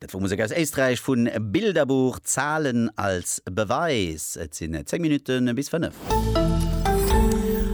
Dat wor Musek aus Éisträich vu Bilderbuch, Zahlen als Beweis. Et sinn 10 Minutte bis 5.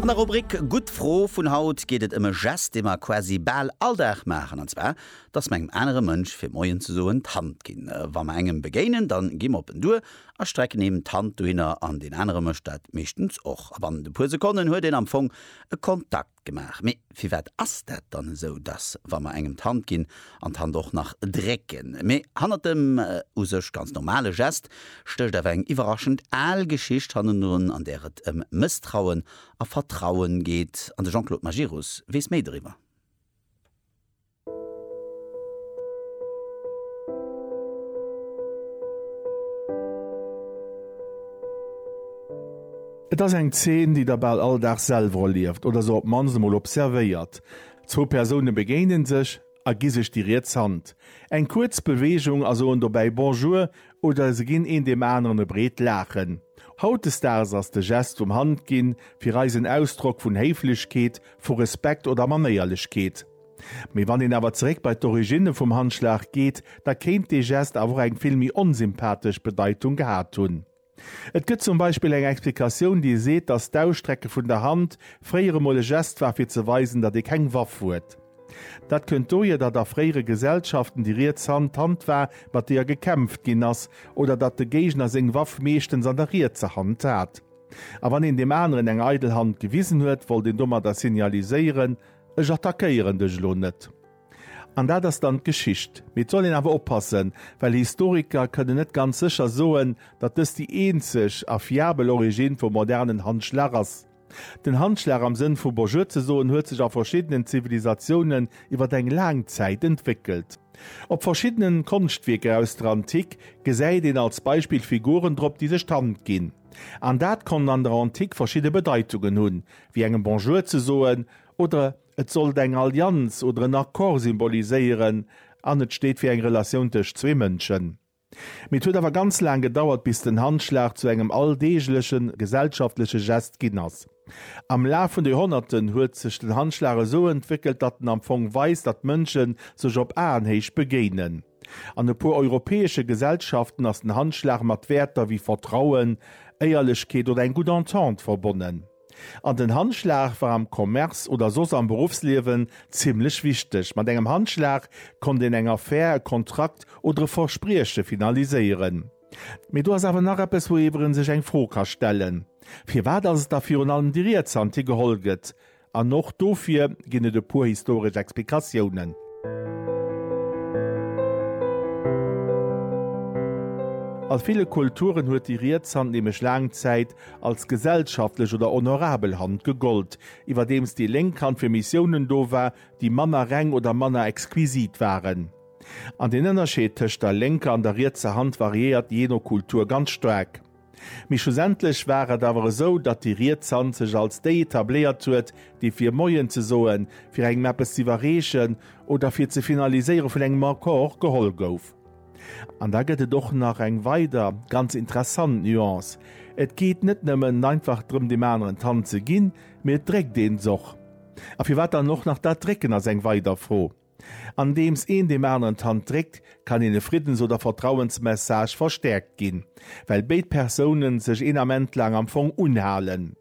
An der Rubrik Gutt Fro vun haut geet et ëm e Gest, dee mer quasi bal all Dag maachen, an zwar, dass mer engem anere Mënsch fir Moien ze soen d'Hand ginn. Wa mer engem begéinen, dann gi mer op en duer a strecken him d'Hand dohinner an deen anere mécht dat meeschtens och. A bannent e puer Sekonnen huet een am Fong e Kontakt. Gemaach. Mee firwat ass dat dann esou, dass wa mer engem d'Hand ginn an d'Hand och nach drécken, mee hannert dem u sech ganz normale Gest stécht awer eng iwwerraschend al Geschicht hannendrun, an där et ëm Mësstrauen a Vertrauen geet? An de Jean-Claude Majerus weess méi doriwwer. Et ass eng Zeen, déi der bal all Dag selwer erlieft oder se op d'mannst emol observéiert. Zwou Persoune begéine sech a gi sech déi riets Hand. Eng kuerz Beweegung a soen dobäi Bonjour oder se ginn een deem aneren e breet Laachen. Hautdesdaags ass de Gest vum Handginn fir eis en Ausdrock vun Héiflechkeet, vu Respekt oder Manéierlechkeet. Mee wann een awer zeréck bei d'Origine vum Handschlag geet, da kéint dee Gest awer och eng vill méi onsympathesch Bedeitung gehat hunn. Et gëtt zum Beispill eng Explikatioun, déi seet, datt d'Ausstrecke vun der Hand fréier emol e Gest war, fir ze weisen, datt ee keng Waff huet. Dat kënnt dohier, datt a fréiere Gesellschaften déi riets Hand d'Hand war, mat deeër gekämpft ginn ass, oder datt de Géigner seng Waff meeschtens an der rietser Hand hat. A wann een deem aneren eng eidel Hand gewisen huet, wollt een domadder signaliséieren, Ech attackéieren dech elo net. An dat ass dann d'Geschicht. Mee et soll een awer oppassen, well Historiker kënnen net ganz sécher soen, datt dëst déi eenzeg a fiabel Origine vum modernen Handschlag ass. Den Handschlag am Sënn vu Bonjour ze soen huet sech a verschiddenen Zivilisatiounen iwwer eng laang Zäit entwéckelt. Op verschiddenen Konschtwierker aus der Antik gesäit een als Beispill Figuren drop, déi sech d'Hand ginn. An dat konnt an der Antik verschidde Bedeitungen hunn, wéi engem Bonjour ze soen, oder et sollt eng Allianz oder en Accord symboliséieren an et steet fir eng Relatioun tëscht zwee Mënschen. Mee et huet awer ganz laang gedauert, bis den Handschlag zu engem alldeegleche gesellschaftleche Gest ginn ass. Am Laf vun de Joerhonnerten huet sech den Handschlag esou entwéckelt, datt en am Fong weist, datt Mënsche sech op Aenhéicht begéinen. An e puer europäesche Gesellschaften ass den Handschlag mat Wäerter wéi Vertrauen, Éierlechkeet oder eng gutt Entente verbonnen. An den Handschlag war am Commerce oder soss am Beruffsliewen zimmlech wichteg. Mat engem Handschlag konnt een eng Affär, e Kontrakt oder e Versprieche finaliséieren. Mee do ass awer nach eppes, wouiwwer ee sech eng Fro ka stellen, Firwat ass et da virun allem déi riets Hand, déi geholl gëtt? An och dofir ginn et e puer historesch Explikatiounen. A ville Kulturen huet déi riets Hand nämlech laang Zäit als gesellschaftlech oder honorabel Hand gegollt, iwwerdeems déi lénk Hand fir Missiounen do war, déi manner reng oder manner exquisit waren. An den Ënnerscheed tëscht der lénker an der rietser Hand variéiert jee no Kultur ganz staark. Mee schlussendlech war et awer esou, datt déi riets Hand sech als déi etabléiert huet, déi fir Moien ze soen, fir engem eppes z'iwwerreechen oder fir ze finaliséiere vun engem Accord geholl gouf. An da gëtt et och nach eng weider, ganz interessant Nuance, Et geet net nëmmen einfach drëm deem aneren d'Hand ze ginn, mee et dréckt een s'och. A firwat dann och nach dat Drécken ass eng weider Fro. Andeems een deem aneren d'Hand dréckt, kann een e Friddens oder Vertrauensmessage verstäerkt ginn, well béid Persoune sech een Ament laang am Fong unhalen.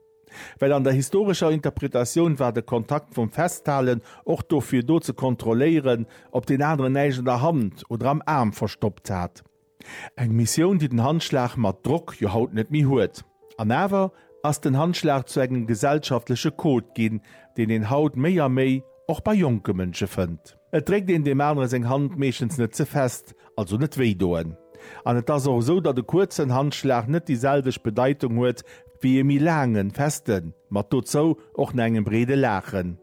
Well an der historescher Interpretatioun war de Kontakt vum Festhalen och dofir do, ze kontrolléieren, ob deen aneren näischt an der Hand oder am Aarm verstoppt hat. Eng Missioun, déi den Handschlag mat Drock jo haut net méi huet. An awer ass den Handschlag zu engem gesellschaftleche Code ginn, deen een haut méi a méi och bei jonke Mënsche fënnt. Et dréckt een deem anere seng Hand meeschtens net ze fest, also net wéidoen. An et ass och esou, datt e kuerzen Handschlag net déi selwecht Bedeitung huet wéi e méi laangen, festen, mat dozou och na engem breede Laachen.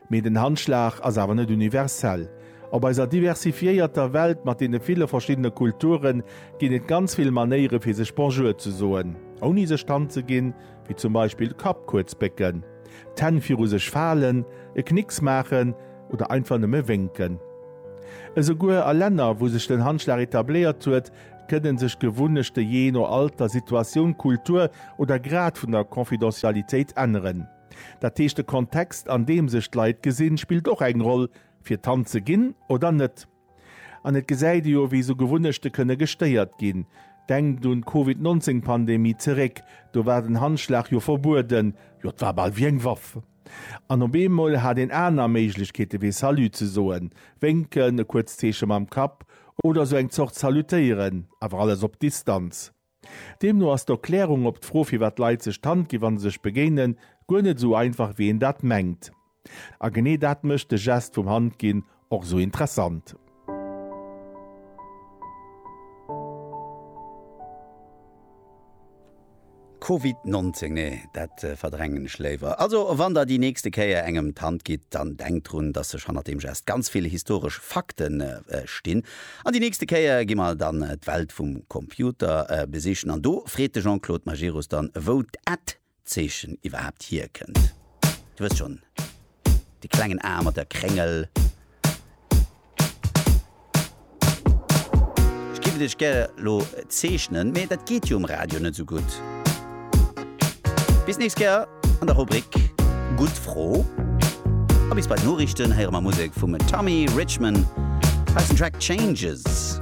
Mee den Handschlag ass awer net universell. Op eiser diversifiéierter Welt mat deene ville verschiddene Kulture ginn et ganz vill Manéiere fir sech Bonjour ze soen, ouni sech d'Hand ze ginn, wéi zum Beispill Kapp kuerz bécken, d'Hänn viru sech falen, e Knicks maachen oder einfach nëmme wénken. Esouguer a Länner, wou sech den Handschlag etabléiert huet, kënne sech Gewunnechte jee no Alter, Situatioun, Kultur oder Grad vun der Confidentialitéit änneren. Dat heescht de Kontext an deem sech d'Leit gesinn, spillt och eng Roll, fir d'Hand ze ginn oder net. An et gesäit ee jo, wéi esou Gewunnechte kënne gestéiert ginn. Denkt un d'Covid 19 Pandemie zeréck, do war den Handschlag jo verbueden, jo et war bal wéi eng Waff. An op eemol hat een aner Méiglechkeete wéi Salut ze soen, Wénken, e kuerzt Zeeche mam Kapp oder esou eng Zort Salutéieren, awer alles op Distanz. Deemno ass d'Erklärung op d'Fro firwat Leit sech d'Hand ginn wann se sech begéinen, guer net esou einfach wéi een dat mengt. A genee dat mécht de Gest vum Hand ginn och esou interessant. Covid 19, nee dat verdrängen ech léiwer. Also wann der déi nächste Kéier engem d'Hand gitt, dann denkt drun dass sech hannert deem Gest ganz vill historesch Fakten stinn. An déi nächste Kéier gi mer dann d'Welt vum Computer besichen an do freet de Jean-Claude Majerus dann, wou d'Ad Zeechen iwwerhaapt hierkënnt. Dir wësst schonn, dee klengen A mat der Kréngel. Ech géif et iech gäre elo zeechnen, mee dat geet jo um Radio net esou gutt. Bis nächst Kéier an der Rubrik Gutt Fro a bis bei d'Noriichten héiere mer Musek vum Tommy Richman aus dem Track Changes.